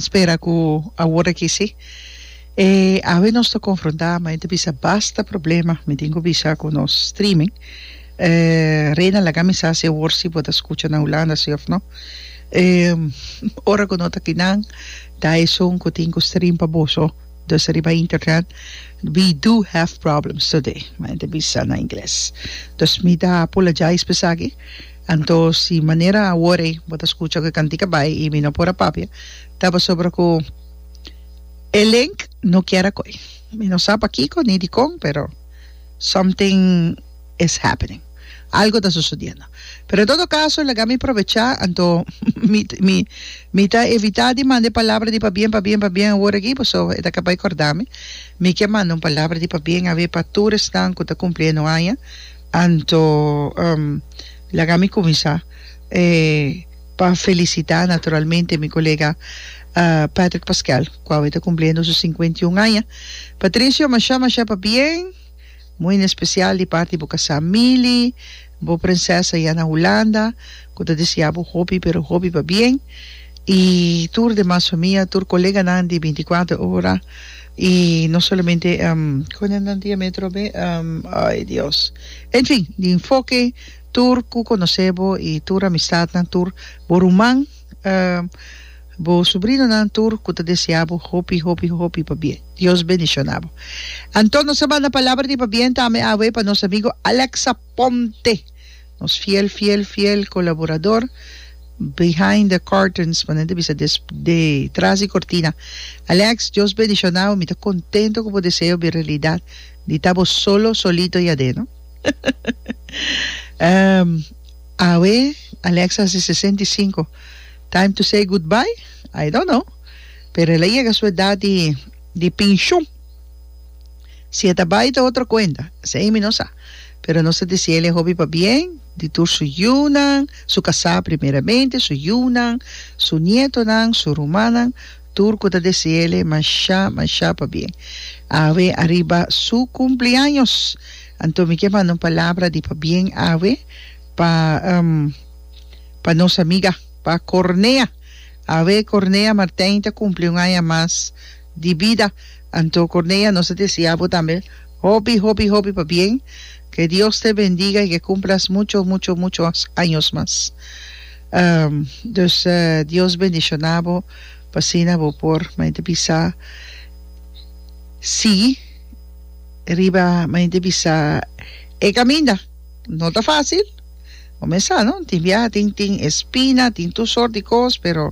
Spera ku awor aki si. E awe nos ta konfrontá, ma e ta bisa basta problema, mi tin ku bisa ku nos streaming. Reina laga mi sa si awor si bo ta skucha na Hulanda si òf no. Ora ku no ta aki nan ta esun ku tin ku stream pa boso dus riba internet, we do have problems today, mi ta bisa na ingles. Dus mi ta apulajais pa esaki. Anto si manera awor ei bo ta skucha ku e kantika bai i mi no por a papia ta pasobra ku e link no kier a koi. Mi no sa pakiko ni dikon pero something is happening. Algu ta susodiendo. Pero en todo kaso laga mi probecha anto mi mi mi ta evitá di manda e palabra di pabien pabien pabien awor aki paso e ta kaba e kordami. Mi ke manda un palabra di pabien a ver pa tur esnan ku ta kumpli e no aña. Anto laga mi kuminsá pa felisitá naturalmente mi kolega Patrick Pascual ku awe ta kumpliendo su sinkuenta i un aña. Patricio, mashá mashá pa bien, muy na especial di parti bo kasá Mili, bo prinsesa ya na Hulanda ku ta deseá bo hopi pero hopi pa bien i tur demas famia, tur koleganan di binti kuater ora. Y no solamente cunen nan dia metro be ay Dios en fin di enfoke tur cu conoce bo y tur amistadnan tur bo ruman bo sobrinonan tur cu ta desea bo hopi hopi hopi pa bien Dios bendiciona bo anto nos a manda palabra di pa bien tambe awe pa nos amigo Alexa Ponte Nos fiel fiel fiel colaborador behind the curtains pone ta bisa des de tras di cortina Alex Dios bendicionao mi ta contento cu bo deseo bin realidad di ta bo solo solito yadé no um awe Alex a haci sesenta y cinco time to say goodbye I don't know pero el a yega su edad di di pincion. Si e ta bai ta otro cuenta, esei mi no sa. Pero nos ta dici el e hopi pa bien di tur su yiunan, su casa primeramente, su yiunan, su nietonan, su rumannan, tur cu ta dici el masha masha pa bien. Awe ariba su cumpleaños, anto mi ke manda un palabra di pa bien awe pa pa nos amiga, pa Cornea. Awe Cornea Martijn ta cumpli un aña mas. di bida. Anto Corneia nos ta desia bo tambe hopi hopi hopi pa bien ke Dios te bendiga y ke cumplas mucho mucho mucho años mas dus Dios bendiciona bo pa asina bo por mente bisa si riba mente bisa e caminda no ta facil bo mes sa no tin biaha tin tin espina tin tur sort di cos pero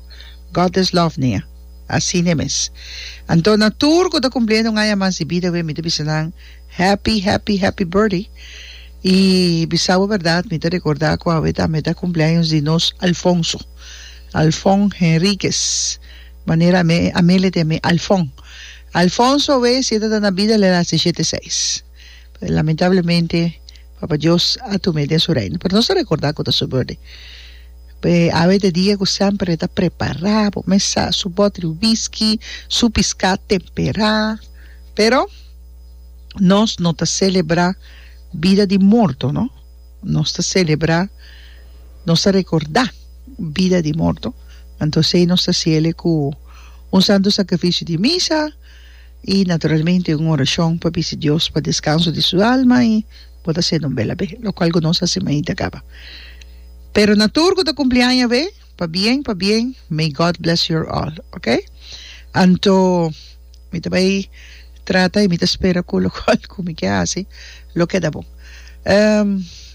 God is love ne'e. Asina mes. Anto na tur cu ta cumpliendo un aña mas di bida awe mi ta bisa nan Happy Happy Happy Birthday y bisa bo berdad mi ta recorda cu awe tambe ta cumpleaños di nos Alfonso Alfon Henriquez manera ame ame le tin ami Alfon Alfonso awe si e ta ta na bida le lastichete seis pero lamentablemente Papa Dios a tuma e den su Reino, pero nos ta recordá cu ta su birthday. Pe awe e ta e dia cu semper e ta prepará, bo mes sa, su bottle whisky, su piscá temperá. Pero nos no ta celebrá bida di morto, no. Nos ta celebrá, nos ta recordá bida di morto. Anto esei nos ta haci el e cu un santo sacrificio di misa. I naturalmente un orashon pa bisa Dios pa deskanso di su alma i bo ta sende un bel abé, lokual ku nos a hasi mainta kaba. Pero na tur ku ta kumpli aña abé, pabien pabien, may God bless your all, okay? Anto mi ta bai trata i mi ta spera ku lokual ku mi ke hasi lo keda bon.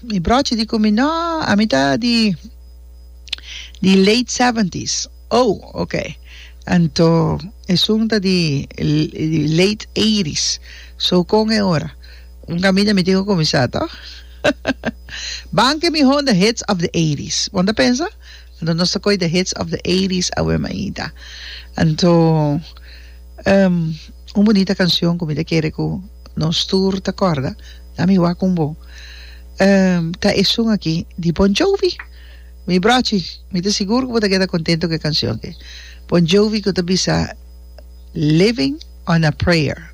Mi brochi di ku mi, No, ami ta di di late seventies. Oh, ok. Anto esun ta di late eighties. So con e ora? Un camina mi tin cu cuminsa to. Ban ke mi honda hits of the eighties. Bon ta pensa? Anto nos ta coy the hits of the eighties awe maita. Anto ehm un bunita cancion cu mi ta kere cu nos tur ta corda. Dame wak un bo. Ehm ta esun aki di Bon Jovi. Mi brochi, mi ta sigur ku bo ta keda kontentu ku e kanshon ke. Bon Jovi ku ta bisa Living on a Prayer.